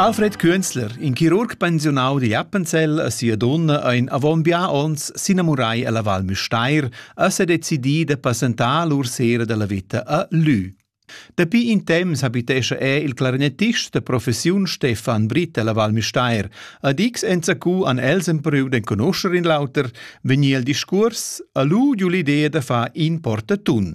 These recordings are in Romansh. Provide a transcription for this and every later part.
Alfred Künzler, in chirurg pensiunau di Appenzell a sia donna ein avon bia onns s'inamurai alla Val Müstair e se decidi de passentar lur sera della vita a Lü. Dapi in temps habitescha er il clarinettist de professiun Stefan Britt alla Val Müstair. Ad X enzacu an els empriu d'enconoscher in lauter, vegnir il discurs, a lu giu l'idea de far in portatun.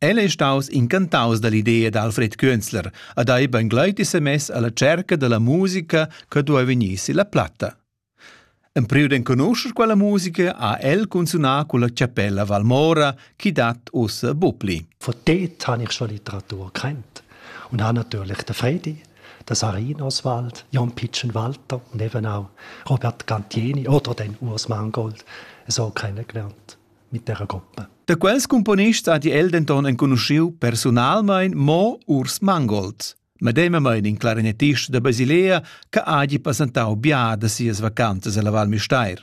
El ei staus incantaus dall'idea d'Alfred Künzler ad haver bangleiti semess alla cerca dalla musica che duei vegnir silla platta. Empriu d'enconuscher quella musica ha el cunzunà culla chapella Valmora chi dat ussa Bupli. Von dort habe ich schon Literatur gekannt und habe natürlich den Fredi, den Sarin Oswald, Jan Pitschen Walter und eben auch Robert Gantieni oder den Urs Mangold so kennengelernt. Mitterragoppa. Da quels cumponists ha el denton enconuschiu personalmein mo Urs Mangold, medemamain in clarinettist da Basilea che hagi passentau bia da sias vacanzas ella Val Müstair.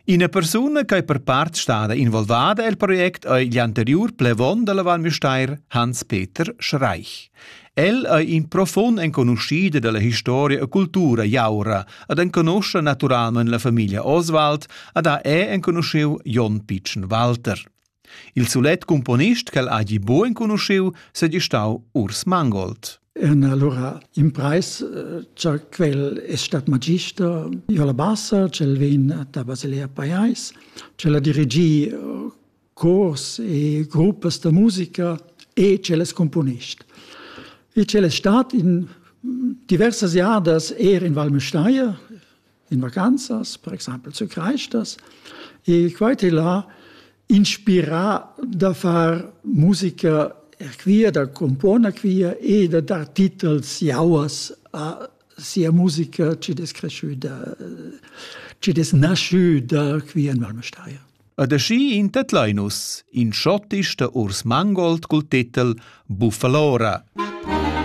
Ina persuna che per part stada involvada el project ei gl'anteriur plevon dalla Val Müstair Hans-Peter Schreich. El ei in profund enconuschida dalla historia e cultura jaura ed enconoscha naturamein la famiglia Oswald ed ha è enconuscheu Jon Pitschen Walter. Il sulet componist ch'el hagi buc enconuscheu seigi stau Urs Mangold. En allora in preis cha quel è stat magister io la bassa, cel vegn da Basilea Paiais, cel ha dirigì cors e gruppas da musica e cellas componist. Il cel è stat in diversas jadas er in Val Müstair, in vacanzas, per exempel zu Kreistas, e quite là inspirà da far musica quia, da componer quia e da dar titels jauas a sia musica ci des cresciuta, ci des nasciuta qui in Val Müstair. Ed aschi in tedlain nus in schottisch da Urs Mangold cul titel Buffalora.